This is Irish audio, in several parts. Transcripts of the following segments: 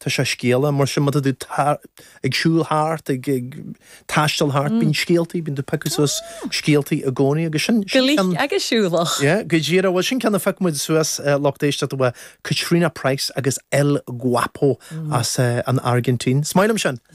Tá sé scéalach, mar sin, má tá tú ag siúl thart, ag taisteal thart, bíonn scéaltaí, bíonn tú ag piocadh suas scéaltaí i gcónaí agus sin ceann. Scéalach agus siúlach. Yeah, go díreach. Bhuel, sin ceann a phioc muid suas, lucht éisteachta uaidh, Catriona Price agus El Guapo as an Airgintín. Is maith liom sin!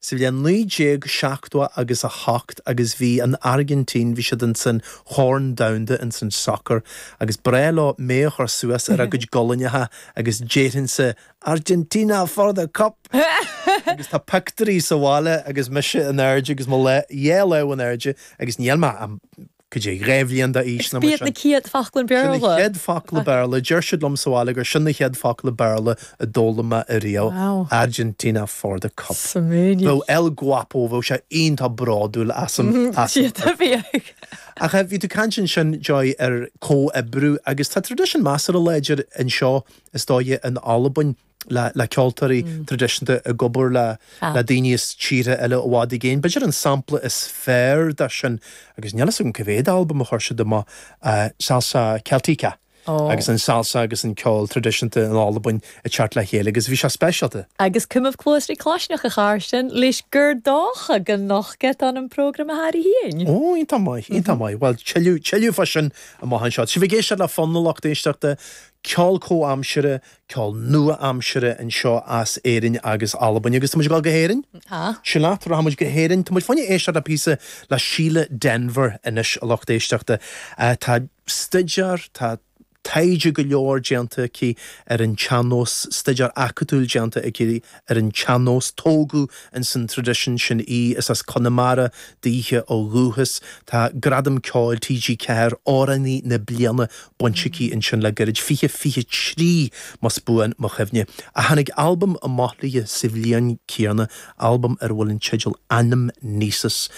sa bhliain 1970 agus 8 agus bhí an Airgintín, bhí siad insan Chorn Domhanda insan sacar agus breá leo mé a chur suas ar a gcuid gualainneacha agus déarfainnse Argentina for the cup! agus tá pictiúirí sa bhaile agus mise in airde agus mo dhá lámh in airde agus níl mé ach dhá bhliain d'aois nó mar sin. Sin na chéad focla Béarla? Sin na chéad focla Béarla. Deir siad liom sa bhaile gur sin na chéad focla Béarla a d'fhoghlaim mé riamh. Wow. Argentina for the cup. Suimiúil. Nó El Guapo, bheadh sé iontach bródúil asam. Cinnte a bheadh. Ach bhí tú ag caint ansin, Joy, ar comhoibriú agus tá traidisiún measartha láidir anseo, is dóigh, in Albain. le ceoltóirí traidisiúnta ag obair le daoine as tíortha eile i bhfad i gcéin. B'fhéidir an sampla is fearr de sin, agus níl a fhios agam cé mhéad albam a chuir siad amach, Salsa Celtica agus an salsa agus an ceol traidisiúnta in Albain ag teacht le chéile agus bhí sé speisialta. Agus cùm cluas ri claisneachd airson sin, leis, gur dòcha gun nochd iad ann am prògram a tha romhainn féin. Ó, iontach maith, iontach maith. Bhuel, tuilleadh, tuilleadh fá sin amach anseo. Sibh ag éisteacht le Fonn, a lucht éisteachta, ceol comhaimseartha, ceol nua-aimsire anseo as Éirinn agus Albain agus tá muid ag dul go hÉirinn. Ah. Sin leat, rachaidh muid go hÉirinn. Tá muid chun éisteacht le píosa le Síle Denvir anois, a lucht éisteachta. Tá staideár, tá taighde go leor déanta aici ar an tsean-nós, staideár acadúil déanta aici ar an tsean-nós. Tógadh ins an traidisiún sin í is as Conamara daoithe ó dhúchas. Tá Gradam Ceoil TG4 Amhránaí na Bliana bainte aici ansin le gairid, 2023 más buan mo chuimhne. Ah, tháinig albam amach léi sa bhliain céanna, albam ar a bhfuil an teideal Anamnesis.